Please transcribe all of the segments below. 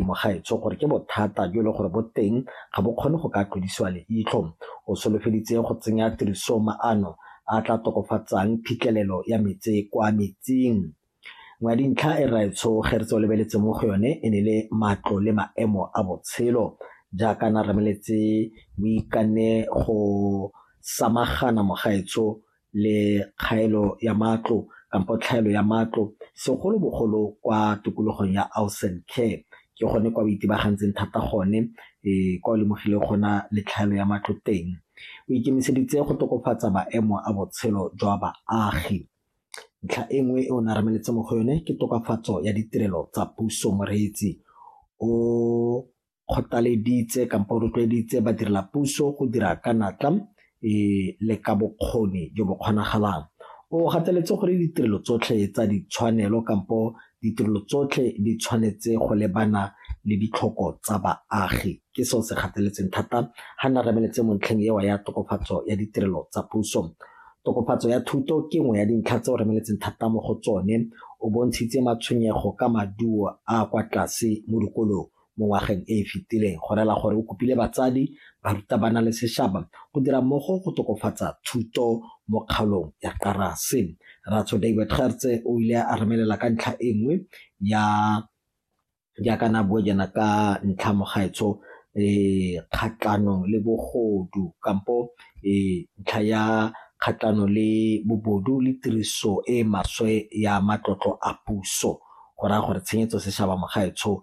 Mogaetsho gore ke bothata jo e leng gore bo teng ga bo kgone go ka tlodisiwa leitlho. O solofeditse go tsenya tirisong maano a a tla tokofatsang phitlhelelo ya metsi kwa metsing. Nngwe ya dintlha e Rraetsho Gertse o lebeletseng mo go yone e ne le matlo le maemo a botshelo jaaka a ne a rameletse Moikane go samagana Mogaetsho le kgaelo ya matlo kampo tlhaelo ya matlo segolobogolo kwa tikologong ya Ausen Care ke gone kwa o itebagantseng thata gone um kwa o lemogile gona le tlhaelo ya matlo teng o ikemiseditse go tokafatsa maemo a botshelo jwa baagi ntlha e nngwe e o ne a rameletse mo go yone ke tokafatso ya ditirelo tsa puso moreetsi o kgothaleditse kampo o rotloeditse badirela puso go dira ka natla e le ka bokgoni jo bo kgonagalang o gateletse gore ditirelo tsotlhe tsa ditshwanelo kampo ditirelo tsotlhe di tshwanetse go lebana le ditlhoko tsa baagi ke seo se gateletseng thata ga na remeletse mo ntlheng ewa ya tokofatso ya ditirelo tsa puso tokofatso ya thuto ke nngwe ya dintlha tse o remeletseng thata mo go tsone o bontshitse matshwenyego ka maduo a kwa tlase mo dikolong mo ngwageng e e fetileng go rela gore o kopile batsadi, barutabana le sešaba go dira mmogo go tokofatsa thuto mo kgaolong ya Karase. Ratsho David Gertse o ile a remelela ka ntlha e nngwe ya jaaka na bue jana ka ntlha mogaetsho um kgatlhanong le bogodu kampo um ntlha ya kgatlhano le bobodu le tiriso e maswe ya matlotlo a puso go raya gore tshenyetso sešaba mogaetsho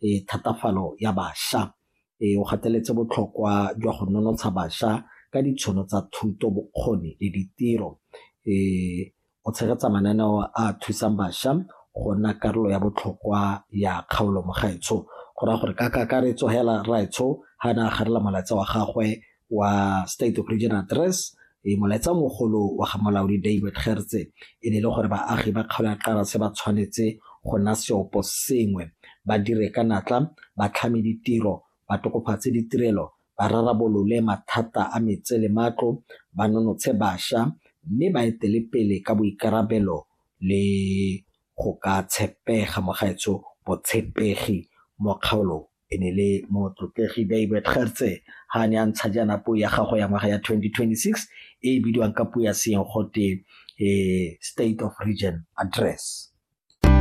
e thatafalo ya bašwa. E o gateletse botlhokwa jwa go nonotsha bašwa ka ditshono tsa thuto, bokgoni le ditiro. E o tshegetsa mananeo a thusang bašwa go nna karolo ya botlhokwa ya kgaolo mo gaetsho. Go raya gore ka kakaretso hela Raetsho ha ne a garela molaetsa wa gagwe wa State of Region Address e molaetsa mogolo wa ga molaodi David Gertse e ne e le gore baagi ba kgaolo ya Qarase ba tshwanetse go nna seopo sengwe ba dire ka natla ba tlhame ditiro ba tokofatse ditirelo ba rarabolole mathata a metse le matlo ba nonotshe bašwa mme ba etele pele ka boikarabelo le go ka tshepega mogaetsho botshepegi mo kgaolong e ne le motlotlegi David Gertse ha ne a ntsha jaana puo ya gago ya ngwaga ya 2026 e e bidiwang ka puo ya seeng gote um state of region address